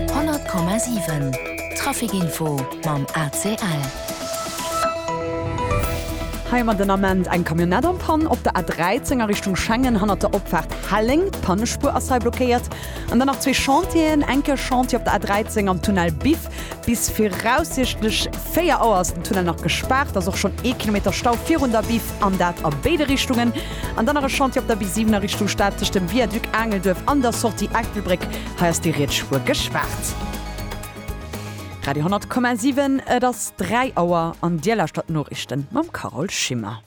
100,7 Traficinfo mam ACL. Hei hu mer den Ament eng Camionnette en panne op der A13 a Richtung Schengen hannert der Opfaart Helleng. D'Pannespuer ass hei blockéiert. An dann nach zwee Chantieren, eng Kéier Chantier op der A13 am Tunnel Biff. Bis viraussiichtlech 4 Auer ass den Tunnel nach gespaart. Ass och schonn ee Kilometer Stau virun der Biff an dat a béide Richtungen. An dann nach e Chantier op der B7 a Richtung Stad tëscht dem Viaduc Aangelduerf an der Sortie Erktelbréck. Hei ass déi riets Spuer gespaart. Radio 10,7 Et ass 3 Auer an Dir lauschtert d'Noriichten mam Carole Schimmer.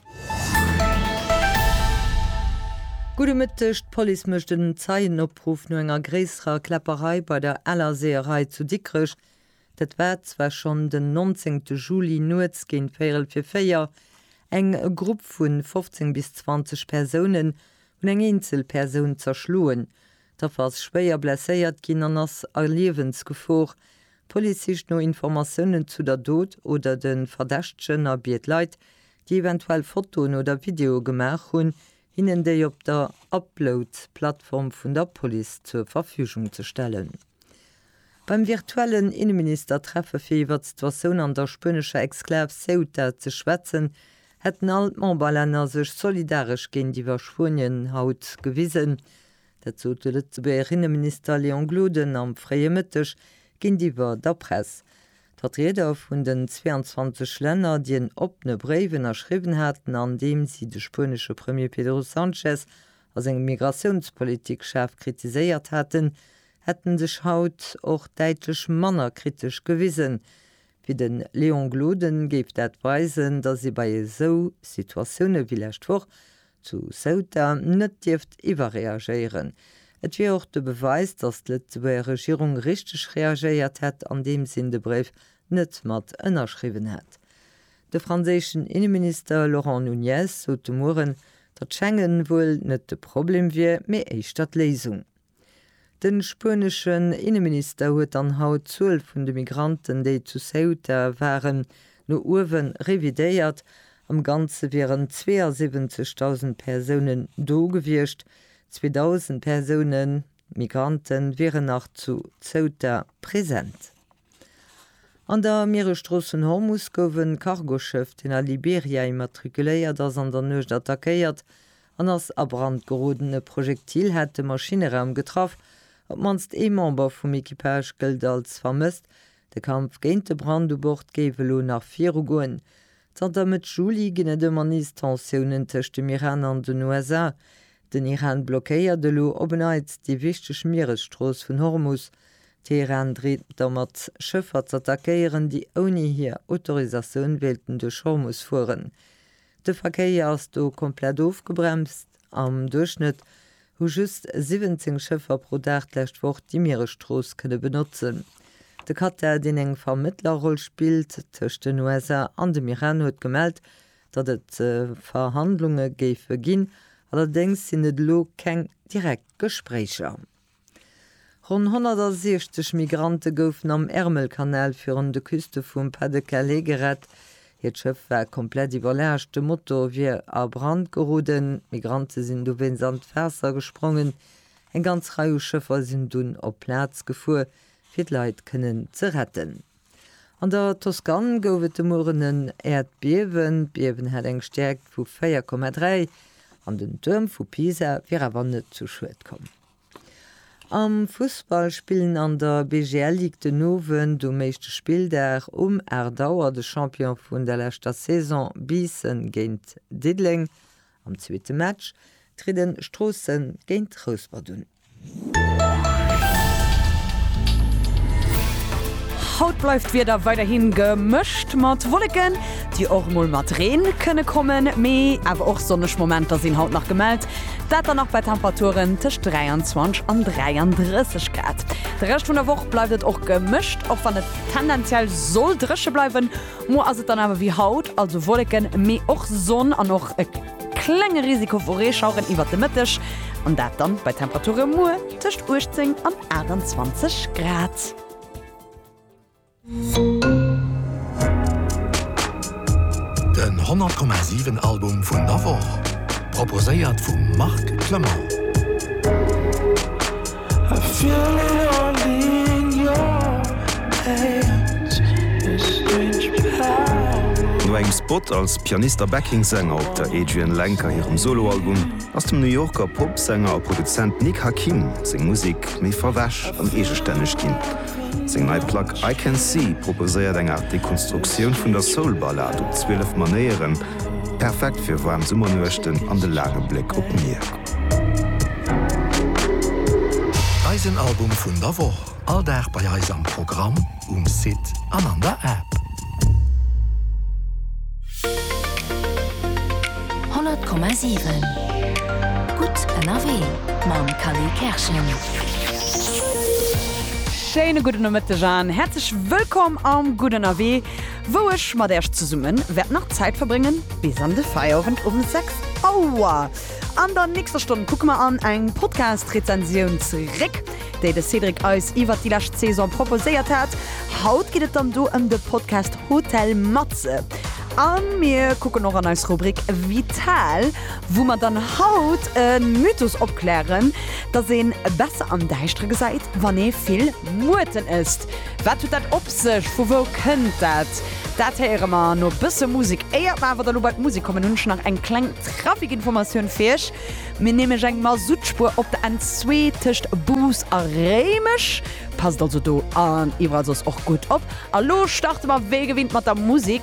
Gudde Mëtteg, D'Police mécht en Zeienopruff no enger gréisserer Kläpperei bei der Ellerseeërei zu Dikrech. Dat war zwar schonn den 19 Juli nuets géint véierel fir véier. Eng Grupp vu 15 bis 20 Persounen hunn eng eenzel Persoun zerschloen. D'Affer ass schwéier blesséiert ginn an ass a Liewensgefor. D'Police sicht no Informatiounen zu der Dot oder de Verdächtegen a biet Leit, déi eventuell Fotoen oder Videoe gemaach hunn, hinnen déi op der Upload-Plattform vun der Police zur Verfügung ze stellen. Beim virtuellen Inneminister-Treffe fir iwwert d'Situatioun an der spuenescher Exklav Ceuta ze schwätzen, hätten all d'Memberlänner sech solidaresch géintiwwer Spuenien haut gewisen. Dat sot de Lëtzebuerger Inneminister Léon Gloden am fréie Mëtteg géintiwwer der Press. D'Vertrieder vun den 22 Länner, déi en oppene Bréif ënnerschriwwen haten, an deem si de spuenesche Premier Pedro Sanchez a seng Migratiounspolitik schaarf kritiséiert haten, hätten sech haut och däitlech manner kritesch gewisen, wéi de Léon Gloden géif dat weisen, datt ee bei esou Situatioune wéi lescht Woch zu Ceuta net dierft iwwerreagéieren. Et wier och de Beweis, datt d'Lëtzebuerger Regierung richteg reagéiert hätt, andeem sinn de Bréif net mat ënnerschriwwen hätt. De franséischen Inneminister Laurent Nunez sot de Mueren, datt Schengen wuel net de Problem wier, mee éischter d'Léisung. De spueneschen Inneminister huet dann haut d'Zuel vun de Migranten, déi zu Ceuta waren, no uewe revidéiert. Am Ganze wieren 72.000 Persounen do gewiescht. 2.000 Persoune Migrante wieren nach zu Ceuta present. An der Mieresstrooss vun Hormus gouf e Cargoschëff, deen a Liberia immatrikuléiert ass, an der Nuecht attackéiert. an ass a Brand geroden. E Projektil hat de Maschinneraum getraff. Op d'mannst ee Member vum Equipage gëllt als vermësst. De Kampf géint de Brand u Bord géif elo nach virugoen. Zanter Mëtt Juli ginn et ëmmer nees Tensiounen tëscht dem Iran an den USA. Den Iran blockéiert elo op en Neits déi wichteg Mieresstrooss vun Hormus. Teheran dreet domat, Schëffer z'attackéieren, déi ouni hir Autorisatioun wéilten duerch Hormus fueren. De Verkéier ass do komplett ofgebremst. Am Duerchschnëtt hu just 17 Schëffer pro Dag d'lescht Woch déi Mieresstrooss kënne benotzen. De Katar, deen eng Vermëttlerroll spillt tëscht den USA an dem Iran, huet gemellt, datt et Verhandlunge géife ginn. Allerdéngs sinn et elo keng direkt Gespréicher. Ronn 160 Migrante goufen am Ärmelkanal virun de Küste vum Pas-de-Calais gerett. Hiert Schëff war komplett iwwerlaascht, de Motor wier a Brand geroden. D'Migrante sinn dowéinst an d'Waasser gesprongen. Eng ganz Rei u Schëffer sinn dunn op d'Plaz gefuer, fir d'Leit kënnen ze retten. An der Toskan gouf et de Mueren en Äerdbiewen. D'Biewen hat eng Stäerkt vu 4,3 an den Tuerm vu Pisa wier awer net zu Schued komm. Am Fussball spillen an der BGL Ligue den Owend um éischte Spilldag um 8 Auer de Champion vun der leschter Saison Biissen géint Diddeleng. Am zweete Match trieden Stroossen géint Rouspert un. Haut bleift d'Wieder weiderhin gemëscht mat Wolleken, déi och mol mat Reen kënne kommen, mee awer och sonneg Momenter sinn haut nach gemellt. Dat dann nach bei Temperaturen tëscht 23 an 33 Grad. De Rescht vun der Woch bleift et och gemëscht, och wann et tendenziell soll dréche bleiwen. Muer ass et dann awer wéi haut, also Wolleken, mee och Sonn an och e klenge Risiko vu Reeschaueren iwwert de Mëtteg. An dat dann bei Temperature muer tëscht 18 an 28 Grad. Den 100,7 Album vun der Woch, proposéiert vum Marc Clement. No engem Spot als Pianist a Backing-Sänger op der Adrianne Lenker hirem Solo-Album ass dem New Yorker Pop-Sänger a Produzent Nick Hakim seng Musek méi verwäsch an eegestänneg ginn. Seng nei Plack I Can See proposéiert eng Aart Dekonstruktioun vun der Soul-Ballad op 12 Manéieren, perfekt fir waarm Summernuechten an de laange Bléck op d'Mier. Eisen Album vun der Woch, all Dag bei eis am Programm, um Site an an der App. 100,7 Gutt ënnerwee mam Kally Kerschen. Schéine gudde Nomëtteg an häerzlech wëllkomm am Gutt ënnerwee, wou ech mat Äerch zesumme wäert nach Zäit verbréngen bis an de Feierowend um 6 Auer. An der nächster Stonn kucke mer an eng Podcast-Rezensioun zeréck. déi de Cédric eis iwwert déi lescht Saison proposéiert hat. Haut geet et dann do ëm de Podcast Hotel Matze. A mir kucken och an eis Rubrik Vital, wou mer dann haut e Mythos opklären, dass ee besser am Däischtere gesäit, wann ee vill Muerten ësst. Wat huet dat op sech? Vu wou kënnt dat? Dat héiere mer no e bësse Musek. Éiert mer awer da lo bei d'Musek kommen, hunn ech nach eng kleng Trafikinformatioun fir iech. Mir nämlech eng Masuttspuer op der N2 tëscht Bous a Réimech. Passt also do an iwwerall soss och gutt op. A lo starte mer wéi gewinnt mat der Musik.